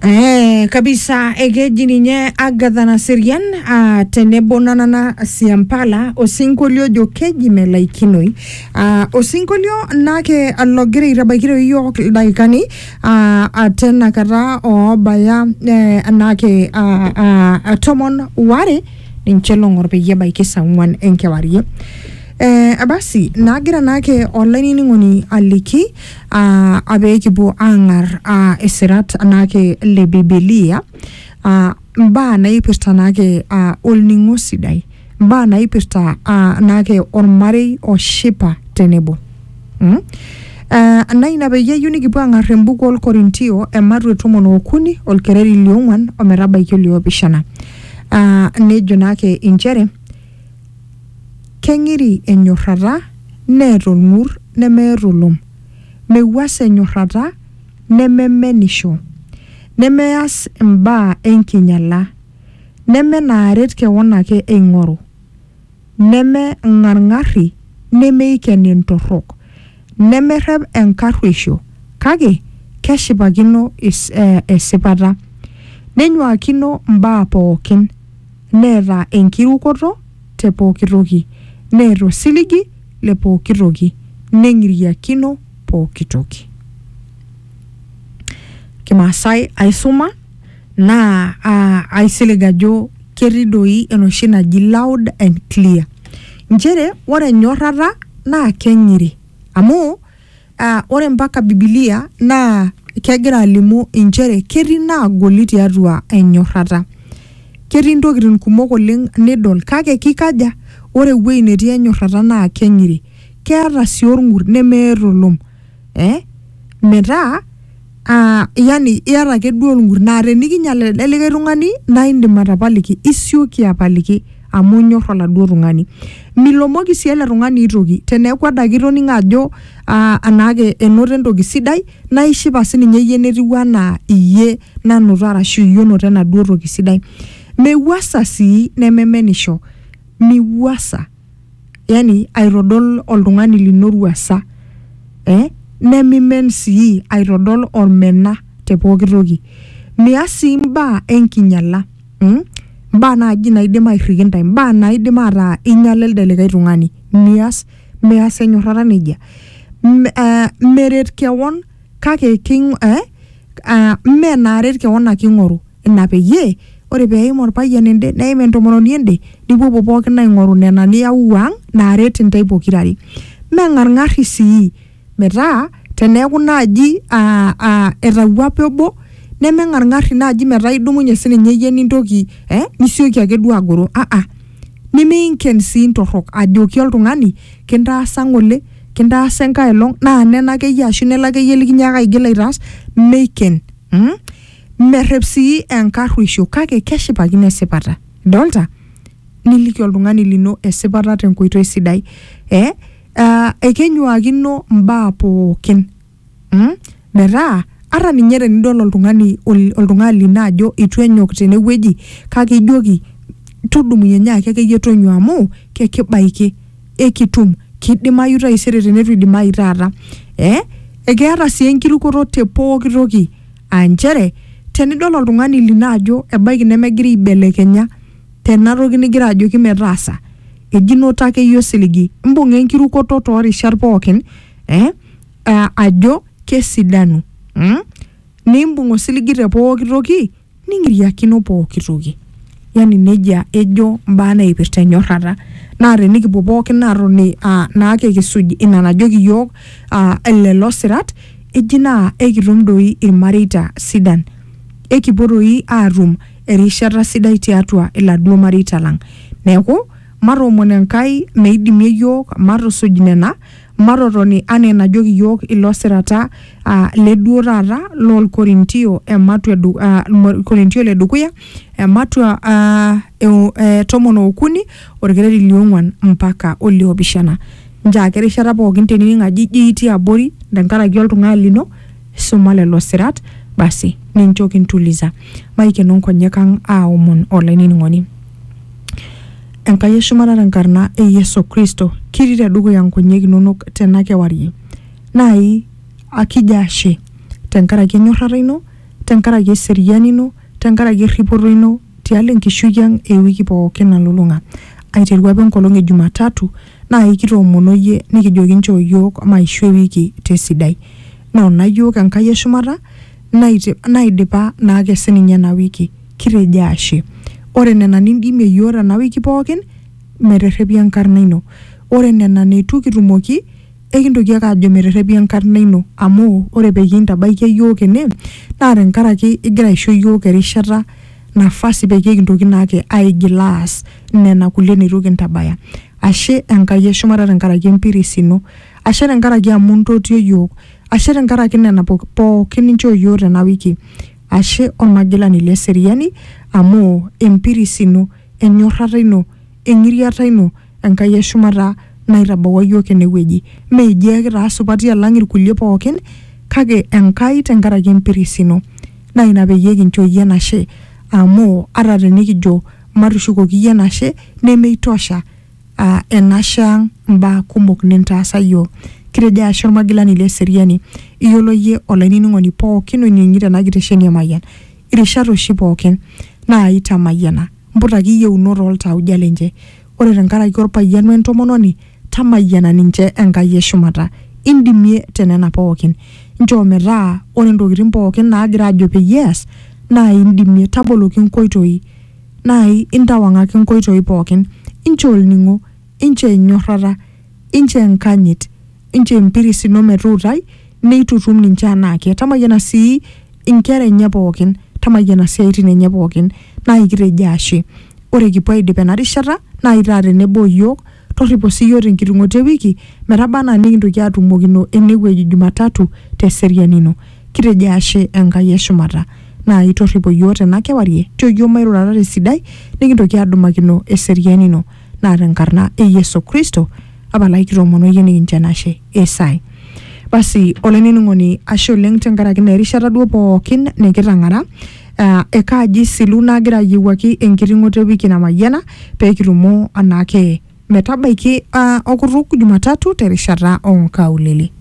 Eh, kabisa ekeji ninye Agatha Naserian ah, tenebo Nanana Siampala osinkolio ojo keji melaikinoi ah, osinkolio nake logira aitabaikiro iyiook ildaikani ah, ah, tenakata oobaya eh, nake ah, ah, ah, tomon ware ninche long'or peyie ebaiki saa ong'uan enkewarie eh, basi nagira nake olainining'oni aliki uh, abe kipuo aang'ar uh, isirat naake le bibilia uh, mbaa naipirta naake uh, olning'o sidai mbaa naipirta uh, naake ormarei oshipa tenebo mm? Uh, na ina peyie eyieu nikipuo aang'ar embuku olkorintio ematu e tomon okuni olkereri liong'uan ometabaiki oliopishana uh, nejo naake inchere Keng'iri enyorrata neeta olng'ur nemeeta olom, mewuas enyorrata nememenisho, nemeas imbaa enkinyala, neme naaret kewon ake eing'oru, neme ng'arng'arri nemeiken intorrok, nemerrep enkarrueisho kake keshipakino esipata, nenyuaakino mbaa pookin. neeta enkirukoto te pooki toki, neeta osiligi le pooki toki, neng'iriakino pooki toki. Kimaasai aisuma naa aa aisilig ajo ketii doi enoshi naji loud and clear. Inchere ore enyorrata naa keng'iri amu Ah, ore mpaka bibilia naa kegira alimu inchere ketii naagoli tiatua enyorrata ketii ntokitin kumok oleng nidol kake kikaja ore ewueji netii enyorrata naa keng'iri keeta sii orng'ur nemeeta olom eh metaa uh, yani iyata ake duo olng'ur naa tenikinyial elde likae tung'ani naa indim atapaliki isioki apaliki amu inyor oladuo tung'ani milomoki sii ele tung'ani aitoki teneeku adake itoning'o ajo uh, anaake enoto entoki sidai naa ishipa sininye iyie netiu anaa iyie nanoto arashu iyie onoto enaduo toki sidai mewuasa sii nememenisho miwuasa yani aitodol oltung'ani lino ruasa eh? nemimen sii aitodol olmena te pooki toki mias sii mbaa enkinyala mm? mbaa naaji naidim airriki ntae mbaa naidim ataa inyala elde likae tung'ani mias mias enyorrata nejia M- eh, meret kewon kake king, eh? uh, mme naaret kewon ake ing'oru Ina peyie, ore pee eim olpayian ende neim entomononi ende, nipuopuo pooki aing'oru nena niauwuo ang naaret intae pokira are. Meng'arng'arri sii metaa teneaku naaji etawuape obo, nemeng'arng'arri naaji metaa idumunye sii ninye iyie nintoki eh nisioki ake duo agoro. Aa. Nimiinken sii ntorrok ajoki oltung'ani kintaasa ng'ole, kintaasa enkae olong naa nena ake iyie ashu nelo ake iyie likinyaaka aigil aitaas, meiken. merrep sii enkarruisho kake keshipakino esipata idolta niliki oltung'ani lino esipata tenkoitoi sidai eh? uh, ekenyuakino mbaa pookin mm? metaa ata ninye tenidol oltung'ani ol- oltung'ani lino ajo itu enyok tenewueji kake ijoki tudumunye nyaaki akeyie tonyua amu kekibaiki ekitum kidimayu taisere teneitu idimayu taata eh? ekeeta sii enkirukoto te pooki toki aa nchere tenidol oltung'ani lino ajo ebaiki nemegira aibelekenya tena toki nigira ajoki metaasa eji noto akeyie osiligi imbung'a enkirukoto toorishat pookin eh, eh, ajo kesidanu mm? nimbung osiligi te pooki toki ning'iriakino pooki toki. Yani nejia ejo mbaa naipirta enyorrata. Naa tenikipuo pookin aatoni aa naake kisuj ina najoki iyiook aa lelo sirat eji naa ekitum doi ilmareita sidan. Ekipuo doi aatum erishata sidai tiatua iladuo mareita lang. Neeku matoomon Enkai meidimie iyiook matusuj nena Matotoni anaa enajoki iyiook ilo sirata aa le duo taata loo Lkorintio ematua e du- aa, Lkorintio le dukuya ematua aa, e o- e tomon ookuni olkereri liong'uan mpaka oliopishana. Nchake erishata pooki tenining ajo ijo itii abori tenkaraki oltung'ani lino suma lelo sirat basi nincho kintulisa. Maikeno nkonyek ang aaomon olainining'oni. Enkai e shumata te nkarna e Yesu Kristo, kitii te dukuya nkonyek inonok tena kewarie. Naai akijo ashe tenkaraki enyorrata ino, tenkaraki eseriani ino, tenkaraki erripoto ino tialo enkishui ang e wiki pookin nalulung'a. Aiteru apa enkolong e Jumatatu naai kitoomono iyie nikijoki nchoo iyiook maishoo ewiki te sidai. Noona iyiook Enkai e shumata naidipa naake sininye ena wiki Kitejo ashe. Ore nena nindimie iyiook tena wiki pookin, meterrepi enkarna ino. Ore nena neitu kitumoki, ekintoki ake aajo meterrepi enkarna ino amu ore peyie intabaikia iyiook ene naa tenkaraki igira aisho iyiook erishata, nafasi peyie kintoki naake aigil aas nena kulie neitu kintabaya. Ashe Enkai e shumata tenkaraki empiris ino. Ashe tenkaraki amu intotio iyiook. Ashe tenkaraki nena pookin ninchoo iyiook tena wiki. Ashe Olmagilani le seriani, amu empiris ino, enyorrata ino, eng'iriata ino, Enkai e shumata, naitabawua iyiook ene wueji. Mme ijo ake taa supati alang ilkulie pooki, kake Enkai te nkaraki empiris ino. Naa ina peyie kincho iyie enashe, amu ata tenikijo matushukoki iyie enashe, nemeitosha aa enashe ang mbaa kumok nintaasa iyiook. Kitejo ashe olmagilani le seriani. Iyiolo iyie olainining'oni pookin oinining'ito ena kitesheni e Mayian irishat oshi pookin naa itamayiana. Mputaki iyieunot oo ltauja lenche. Ore tenkaraki olpayian we ntomononi tamayiana ninche Enkai e shumata. Indimie te nena pookin. Nchoo metaa ore ntokitin pookin naagira aajo peyie eas naa indimie. Taboloki nkoitoi. naai intawang'aki inkoitoi pooki, inchoo olning'o, inchoo enyorrata, inchoo enkanyit, inchoo empiris ino metuutai, neitutum ninche anaake. Tamayiana sii inkera enye pooki, tamayiana isiaitin enye pooki. Naai kitejo ashe. Ore kipuo aidip ena rishata, naai taa tenebo o iyiook Torripo sii iyiook tenkitung'oto e wiki metaba anaa nikintoki aatumokino ene wueji Jumatatu te seriani ino. Kitejo ashe Enkai e shumata naai torripo iyiook tena kewarie. Nchoo iyiook mairurata te sidai nikintoki aadumakino eseriani ino. Naa te nkarna e Yesu Kristo apalaki kitoomono iyie nikincho enashe. Esai. Basi olainining'oni ashe oleng tenkaraki naa erishata duo pookin nikitang'ara uh, ekaaji silu nagira ayiewuaki enkiting'oto ewiki namayiana peekitumo anaake metabaiki uh, okutuk Jumatatu terishata onkaulele.